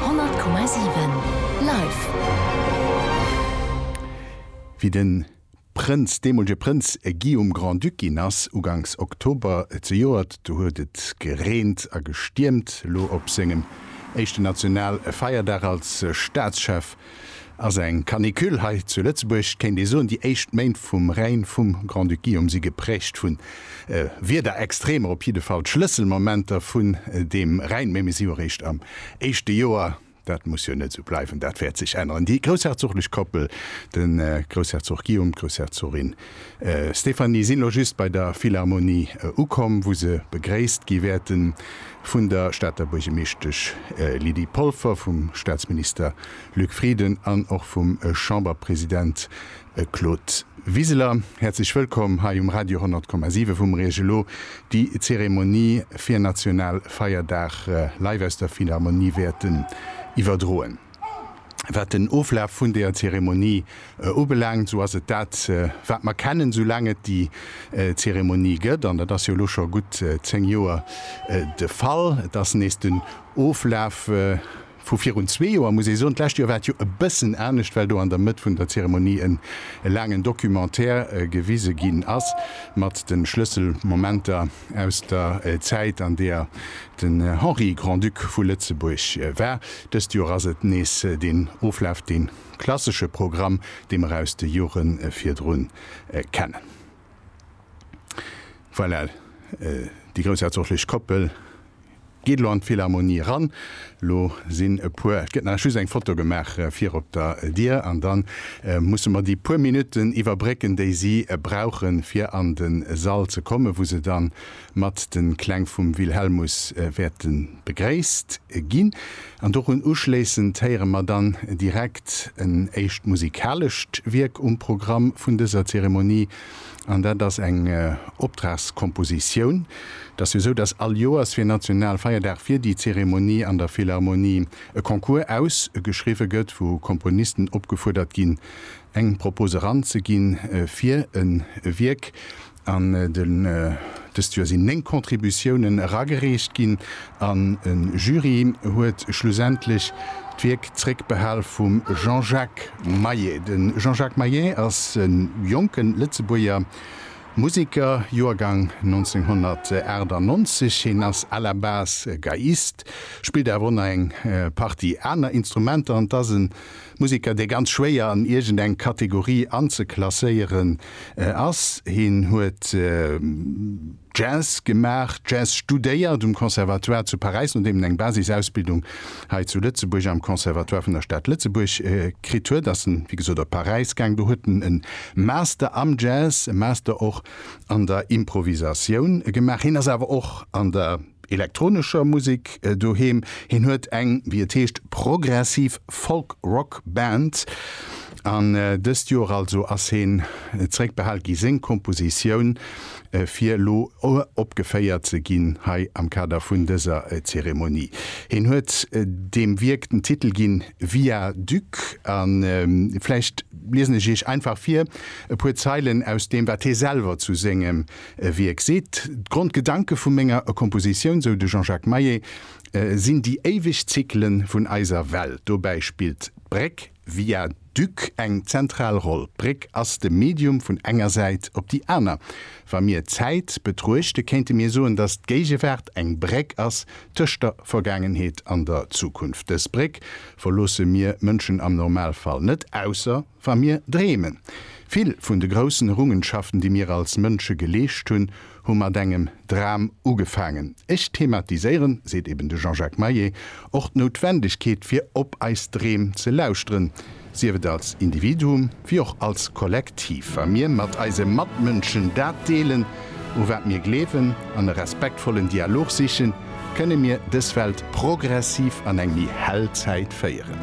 100,7 Live! Wéi de Prënz, deemolege Prënz Guillaume Grand-Duc ginn ass, uganks Oktober zejoert, do huet et gereent a gestiermt. Elo op sengem éischten nationale Feierdag als Staatschef Ass eng Canicule hei zu Lëtzebuerg, kéint ee soen, déi éischt Méint vum Règne vum Grand-Duc Guillaume si gepräägt vun Wiederextremer, op jidde Fall d'Schlësselmomenter vun deem Règne. Mee mir si jo réischt am éischte Joer, dat muss jo net esou bleiwen, dat wäert sech änneren. Déi groussherzoglech Koppel, de Groussherzog Guillaume, d'Groussherzogin Stéphanie, sinn elo just bei der Philharmonie ukomm, wou se begréisst gi wäerten. vun der Stater Buergemeeschtesch Lydie Polfer, vum Staatsminister Luc Frieden an och vum Chamberpresident Claude Wiseler. Häerzlech wëllkomm hei um Radio 10,7 wou mer Iech elo déi Zeremonie fir Nationalfeierdag live aus der Philharmonie wäerten iwwerdroen. Wat den Oflaf vun deer Zeremonie ubelaangt, esou ass et dat, wat mer kennen, soulaang et déi Zeremonie gëtt. An dat ass jo elo scho gutt zéng Joer de Fall. Et ass nees den Oflaf vu virun zwee Joer, muss ee soen. D'lescht Joer war et jo e bëssen anescht, well do an der Mëtt vun der Zeremonie en laangen Documentaire gewise ginn ass mat de Schlësselmomenter. aus der Zäit, an deer den Henri Grand-Duc vu Lëtzebuerg war. Dëst Joer ass et nees deen Oflaf, dee klassesche Programm, dee mer aus de Jore virdrun kennen. Voilà, déi groussherzoglich Koppel. Geet elo an d'Philharmonie eran. Elo sinn e puer, et gëtt nach just eng Foto gemaach vir op der Dier an da musse mer déi puer Minutten iwwerbrécken, déi si brauchen, fir an de Sall ze kommen, wou se da mat de Kläng vum Wilhelmus wäerte begréisst ginn. An dorun uschléissend héiere mer dann direkt en éischt musikalescht Wierk um Programm vun dëser Zeremonie. an dat ass eng Optragskompositioun. Et ass jo esou, datt all Joers fir Nationalfeierdag fir déi Zeremonie an der Philharmonie e Concours ausgeschriwwe gëtt, wou Komponisten opgefuerdert ginn, eng Propose eranzeginn fir e Wierk. An dëst Joer sinn 9 Contributiounen eragereecht ginn an e Jury huet schlussendlech d'Wierk zréckbehal vum Jean-Jacques. Maillet. De Jean-Jacques Maillet ass e jonke Lëtzebuerger Museker, Joergang 1998. Hien ass à la base Geiist, spillt awer och nach eng Partie aner Instrumenter an 't ass e Museker, dee ganz schwéier an iergend eng Kategorie anzeklasséieren ass. Hien huet. Jazz gemaach, Jazz studéiert um Conservatoire zu Paräis, nodeem en eng Basisausbildung hei zu Lëtzebuerg am Conservatoire vun der Stad Lëtzebuerg kritt huet, ass en, wéi gesot, op Paräis gaang. Do huet en e Master am Jazz, e Master och an der Improvisatioun gemaach. Hien ass awer och an der. elektronescher Musek doheem. Hien huet eng, wéi et heescht, progressiv Folk-Rock Band. An dëst Joer also ass hien zeréckbehal gi seng Kompositioun fir elo uropgeféiert ze ginn hei am Kader vun dëser Zeremonie. Hien huet deem Wierk den Titel ginn Via Duc. A vläicht liesen ech iech einfach vir e puer Zeilen aus deem wat hie selwer zu sengem E Wierk seet, D'Grondgedanke vu menger Kompositioun, sou de Jean-Jacques Maillet, sinn déi éiweg Zykele vun eiser Welt. Dobäi spillt d'Bréck, Via Duc, eng zentral Roll. D'Bréck ass de Medium vun enger Säit op déi aner. Wa mir d'Zäit betruechte kéinte mir soen, datt d'Géigewaart eng Bréck ass tëscht der Vergaangenheet an der Zukunft. Dës Bréck verloosse mir Mënschen am Normalfall net, ausser Wa mir dreemen. Vill vun de groussen Errungenschaften, déi mir als Mënsche geleescht hunn, hu mat engem Dram ugefaangen. Ech thematiséieren, seet eben de Jean-Jacques Maé, och d'Noutwendegkeet, fir op eis Dreem ze lauschteren, sief et als Individuum wéi och als Kollektiv, wa mir mat eise Matmënschen dat deelen, u wat mir gleewen, an e respektvollen Dialog sichen, kënne mir dës Welt progressiv an eng méi hell Zäit féieren.